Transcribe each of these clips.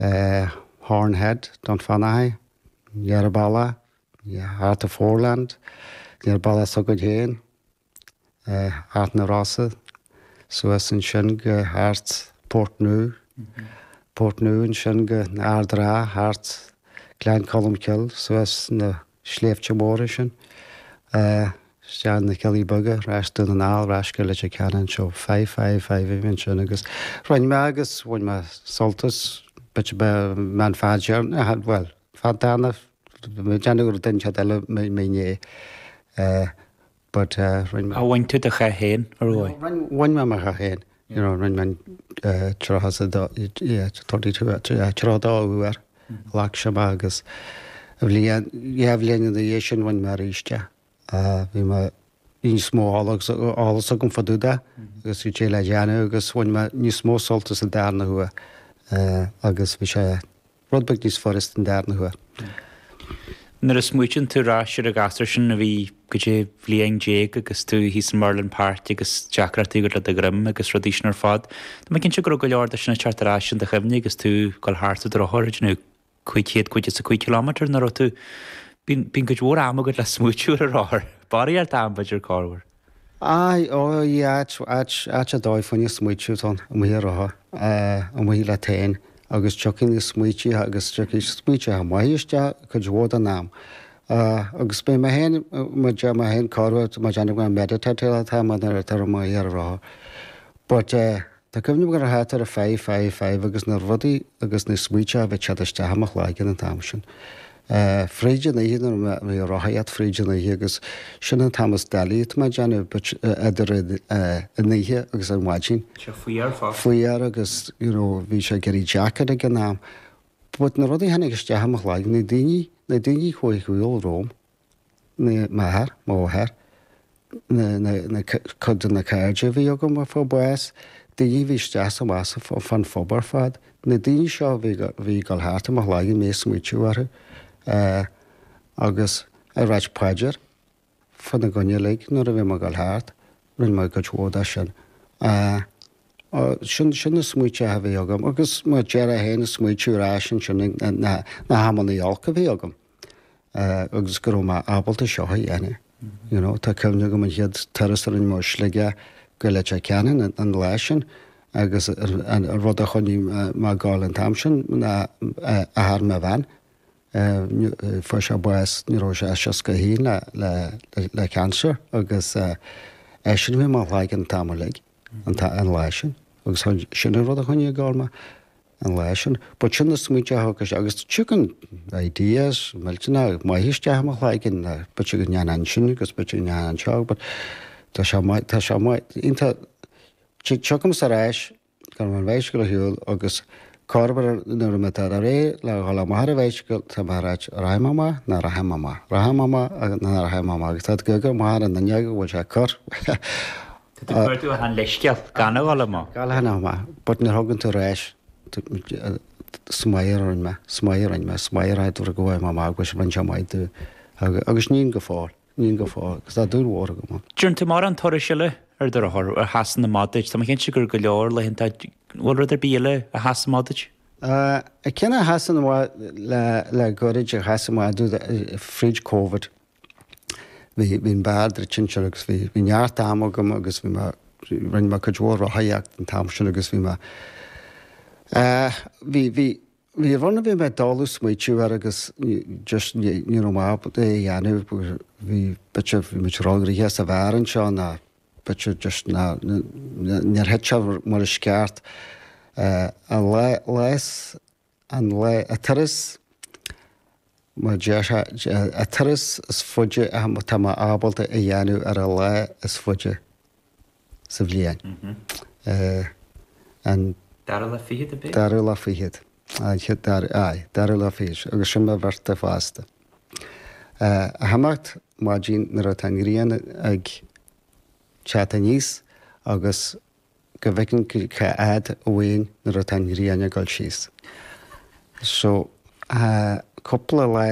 Horn Head, Dunfanaghy, aniar bealach, thart an Foreland, aniar bealach s'againn féin, thart na Rosa, suas ansin go thart Port Nua, Port Nua ansin go Ard an Rátha, thart Gleann Cholm Cille, suas na Sléibhte Móra sin. Isteach na Cealla Beaga, ar ais Dún na nGall, ar ais go Leitir Ceanainn, so five, five, five a bhí ansin agus rinne mé agus bhain mé sult as, bit a bith, meán fad dhearna, a, bhuel, fad dana, déanamh gur duine cead eile mé inné. but rinne mé. Bhain tú do chath féin, ar ndóigh. bhain mé mo chath féin, you know, rinne mé tríocha a dó, yeah, thirty two, yeah, tríocha dó uair, ghlac sé mé agus bliain, dhá bhliain ina dhiaidh sin rinne mé arís é. Bhí mé, bhí níos mó eolas agam fá dtaobh de agus bhí sé le déanamh agus bhain mé níos mó sult as an darna huair agus bhí sé, rud beag níos furasta an darna huair. Nuair a smaoitíonn tú ar ais ar an ghasúr sin a bhí, goidé, bhliain déag agus tú thíos i Merlin Park agus deacracht agat le do dhroim agus rudaí sin ar fad, tá mé cinnte go raibh go leor de sin ag teacht ar ais in do chuimhne agus tú ag dul thart ar do rothar ag déanamh cúig chéad caoga is a cúig kilometre nó an raibh tú, bíonn cuid mhór ama agat le smaoitiú ar an rothar, barraíocht am b'fhéidir, corruair. Aidh, ó, í, áit, áit, áit ar dóigh fá choinne smaoitiú atá ann, amuigh ar rothar, amuigh leat féin, agus tiocfaidh na smaoitíthe agus tiocfaidh smaoitíthe maithe isteach cuid mhór den am. Agus beidh mé féin, muid, mé féin corruair, tá mé ag déanamh gur meditateáil atá mé nuair atá mé amuigh ar an rothar. But eh. Tá cuimhne agam ar an chéad uair an five, five, five agus na rudaí agus na smaointe a bhí ag teacht isteach i mo chloigeann an t-am sin. Fríd an oíche nuair a bhí ag rothaíocht fríd an oíche agus sin an t-am is doilí tá mé ag déanamh but idir an oíche agus an mhaidin. Sea, fuar fosta. Fuar agus, you know, bhí sé ag éirí deacair ag an am. But na rudaí a tháinig isteach i mo chloigeann, na daoine, na daoine a chuaigh ar shiúl romham, na m'athair, máthair, na, na, na, cuid de na cairde a bhí agam a fuair bás, daoine a bhí isteach 's amach fán phub ar fad. Na daoine seo a bhí, a bhí ag dul thart i mo chloigeann, mé ag smaoitiú orthu agus ag ráit paidir fána gcoinne uilig nuair a bhí mé ag dul thart, rinne mé cuid mhór de sin. Sin, sin na smaoitithe a bhí agam agus mar a deir tú féin ag smaoitiú ar ais ansin na, na hamannaí olca a bhí agam. agus go raibh mé ábalta seo a dhéanamh. You know, tá cuimhne agam an chéad turas a rinne mé ó Shligeach go Leitir Ceanainn an lá sin agus an rud a choinnigh mé ag gabháil an t-am sin ná athair mo bhean, fuair sé bás ní raibh sé ach 61 le cancer agus eisean a bhí i mo chloigeann an t-am uilig an lá sin agus sin an rud a choinnigh ag gabháil mé. an lá sin. Ba chun na smaointe a thógais agus thigeann ideas millteanach maith isteach i mo chloigeann ná ba chun go ndéanfainn sin agus ba chun go ndéanfainn seo but tá sé maith, tá sé maith, iontach, tiocfamis ar ais gan an bhicycle a shiúl agus corruair nuair atá mé ar ais le dhul amach ar an bhicycle tá mé ag ráit, rachaidh mé amach, ná rachaidh mé amach, rachaidh mé amach, ná rachaidh mé amach agus tá tú ag amharc amach ar an fhuinneog an bhfuil sé ag cur, Tá tú ag cuartú achan leithscéal gan a dhul amach. Gan a dhul amach, but nuair a thagann tú ar ais is maith a rinne mé, is maith a rinne mé, is maith an rud go ndeachaigh mé amach go mbíonn sé maith duit agus ním go fóill, ním go fóill agus tá dúil mhór agam ann. An dtearn tú mórán turais eile ar do rothar a sheasann amach duit. Tá mé cinnte go raibh go leor laethanta, an bhfuil rud ar bith eile a sheasann amach duit? Ceann a sheasann amach le gairid a sheas amach domh fríd Covid, bhí an beár druidte ansin agus bhí neart ama agam agus bhí mé, rinne mé cuid mhór rothaíocht an t-am sin agus bhí mé, bhí, bhí, bhí rud a bhí mé ag dul ag smaoitiú air agus just ní, ní raibh maith é a dhéanamh, bhí, b'fhéidir bhí muid róghnoitheach sa bheár anseo ná b'fhéidir just ná, níor thit sé mar is ceart. An lá, lá is. an lá, an turas, mar a déarfá, an turas is faide atá mé ábalta a dhéanamh ar an lá is faide sa bhliain. An dara lá fichead ab ea? dara lá fichead. Aye, dara lá fichead, agus sin mo bhirthday fosta. Ag imeacht ar maidin nuair atá an ghrian ag teacht aníos agus. go bhfeicfinn cá háit a mbeinn nuair atá an ghrian ag dul síos. So, cúpla lá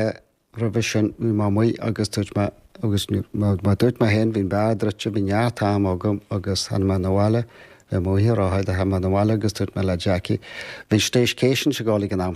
roimhe sin bhí mé amuigh agus dúirt mé, agus mar a dúirt mé féin, bhí an beár druidte, bhí neart ama agam agus tháinig mé 'na bhaile, bhí mé amuigh ag rothaíocht, tháinig mé 'na bhaile agus dúirt mé le Jackie, bhí an staycation ag dul ag an am